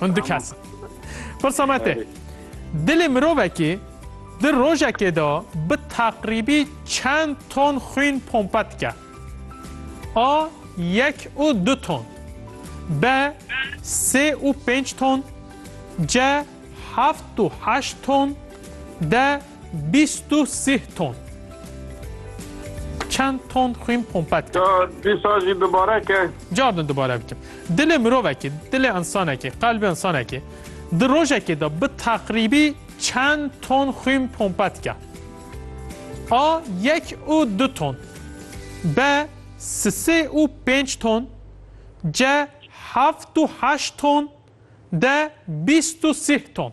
Hûn du kes in. Pirsa me tê. Dilê mirovekî di rojekê de bi teqrîbî çend ton xwîn pompe dike? A. Yek û du ton. B. Sê û pênc ton. C. Heft û heşt ton. D. Bîst û sih ton. Çend ton xwîn pompet kir. Ya dîsa jî dubare ke. Carin dubare bikim. Dilê mirovekê, dilê însanekê, qelbê însanekê di rojekê de bi teqrîbî çend ton xwîn pompet ke? A yek û du ton. B sisê û pênc ton. C heft û heşt ton. D bîst û sih ton.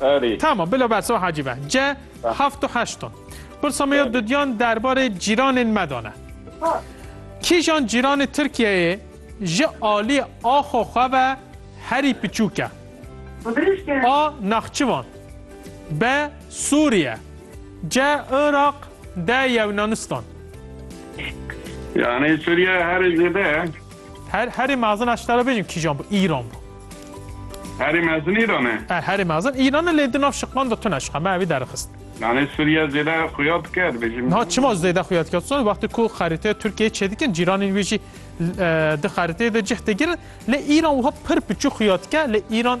Erê. Tamam bila beso hacî be. C heft û heşton. Pirsa me ya dudyan derbarê cîranên me dane. Kîjan cîranê Tirkiyeyê ji aliyê axo xwe ve herî piçûk e? A. Naxçivan B. Sûriye C. Iraq D. Yewnanistan. Yani Suriye her zede Her herê mezin a şitara bêjin kîjan bû? Îran bû. Herê mezin Îran e? Er herê mezin Îran e lê di nav şiqlan de tune şiqe me evî derixist. Yani Suriye zêde xuya dike dibêjin. Niha çima zêde xuya dike? Son wextê ku xerîteya Tirkiyeyê çêdikin cîranên wê jî di xerîteyê de cih digirin lê Îran wiha pir piçûk xuya dike lê Îran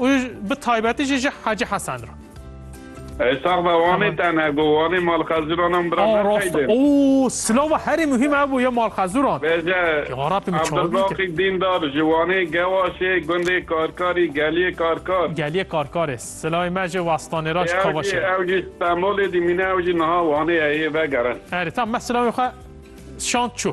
Û bi taybetî jî ji Hacî Hesen re. Ey sax be Wanê tenhe ku Wanê malxezuran an bira neqeydin. Aa rast oo silava herî muhîm ev bû ya malxezuran. Bêje Abdulbaqî Dîndar ji Wanê Gewaşê gundê Karkarî geliyê Karkar. Geliyê Karkarê silavê me ji Wastanêra ji Kavaşê re. Ew jî Stenbolê dîmîne ew jî niha Wanê heye vegerin. Erê tamam me silavên xwe şand çû.